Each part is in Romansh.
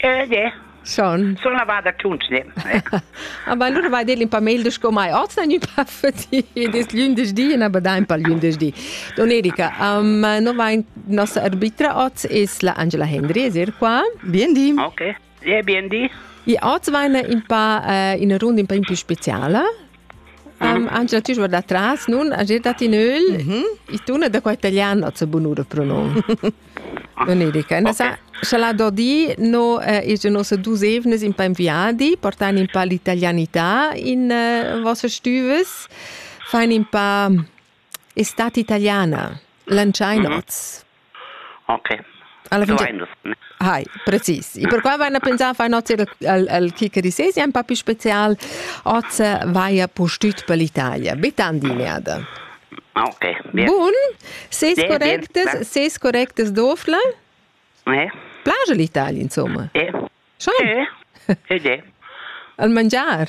Eh, de. Schon. So na va da tuns ne. Aber allora vai dir in paar Mail sco mai oz na gnü pa fati des lündesdi na bada in paar lündesdi. Don Erika, um, no va in nossa arbitra oz es la Angela Hendry, es er qua? Bien di. Okay. Ja, bien di. I oz va in paar uh, in rund in paar più speciala. Um, Angela, tu guarda atras, nun, a giet datti nöl, mm -hmm. i tuna da qua italiano a bunura pronom. Non è dica. Okay. Scha la dodi no eh, is nos dus evnes in pa inviadi, portan in pa l'italianità in eh, vossa stüves, fain in pa estate italiana, lanciai nots. Mm -hmm. Okay. Alla fin Hai, precis. E per qua vaina pensà far nozze al, al chi che disesi un papi special, oz vaia postüt per l'Italia. Betandiniada. Okay. Bien. Bun. Seis bien, correctes, bien, seis correctes dofla? Eh? Plaja l'Italia, insomma. Eh. Schon? Eh. Eh. Al mangiar?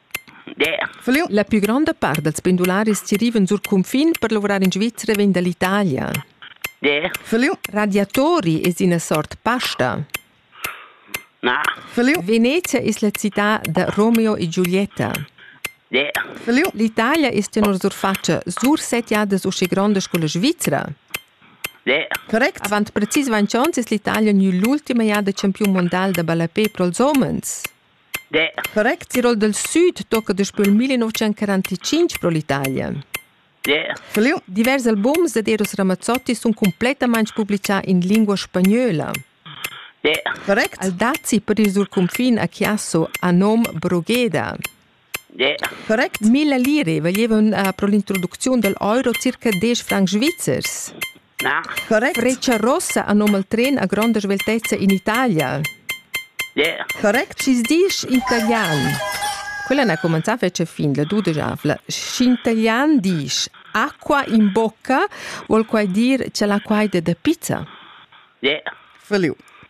La pü gronda part dals pendularis chi rivan sur cunfin per luvrar in Svizra vegn da l'Italia. Radiatori es ina sort pasta. Venezia es la cità da Romeo e Giulietta. L'Italia es tenor surfatscha sursettiadas usche grondas co la Svizra. Correct. Avant precis 20 ons es l'Italia gnü l'ultima jada champiun mondial da ballapè pro'ls homens. Der. Correct Tirol del Süd tocca daspö il 1945 pro l'Italia. Der. Fliu. Divers albums ed Eros Ramazzotti sun cumplettamaing publichà in lingua spagnola. Der. Correct. Al dazi per ir sur cunfin a Chiasso a nom Brugheda. Der. Correct. Mille lire vaglievan uh, pro l'introducziun dal euro circa 10 francs svizzers. Correct. Retscha Rossa anom al tren a gronda sveltezza in Italia. Yeah. Correct, schi's disch italian. Quella n'ha cumenzà a fetger fin la dudesavla. Sch'in italian disch acqua in bocca, vuol quai dir che l'acqua è da pizza? Yeah. Feliu.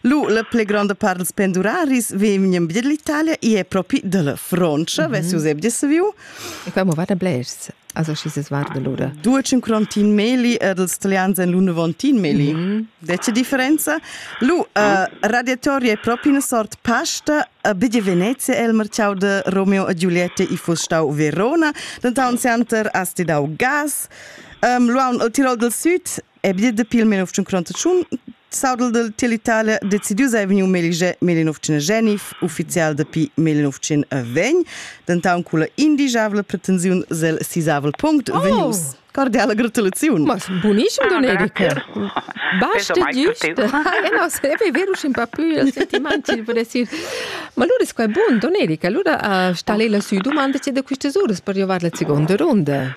Lu la pli gronda part dels penduraris vegnan via dall'Italia e è propi dalla Francia, mm -hmm. vess Josep saviu. E qua mo vada blers, also schi ses varda lura. Duecin Crontin Meli e dels italians en l'una Vontin Meli. Mm -hmm. Dece differenza. Lu, uh, ah. radiatoria è propi una sort pasta Bidi Venezia el marciau de Romeo e Giulietta i fu stau Verona, denton center asti dau gas. Um, luaun el Tirol del Sud è bia dapi il 1951 Saudel del Telitalia decidiu sei vegniu melige 1909, ufficial dapi 1920, dentau culla indigiavla pretensiun sil sisavel punct oh. vegnius. Cordiale gratulazione. Ma buonissimo Domenico. Basta giusto. Eh no, se è vero un po' più il sentimento, per dire. Ma allora è buon, Domenico, allora uh, sta lei lassù domanda c'è da queste ore per arrivare alla seconda ronda.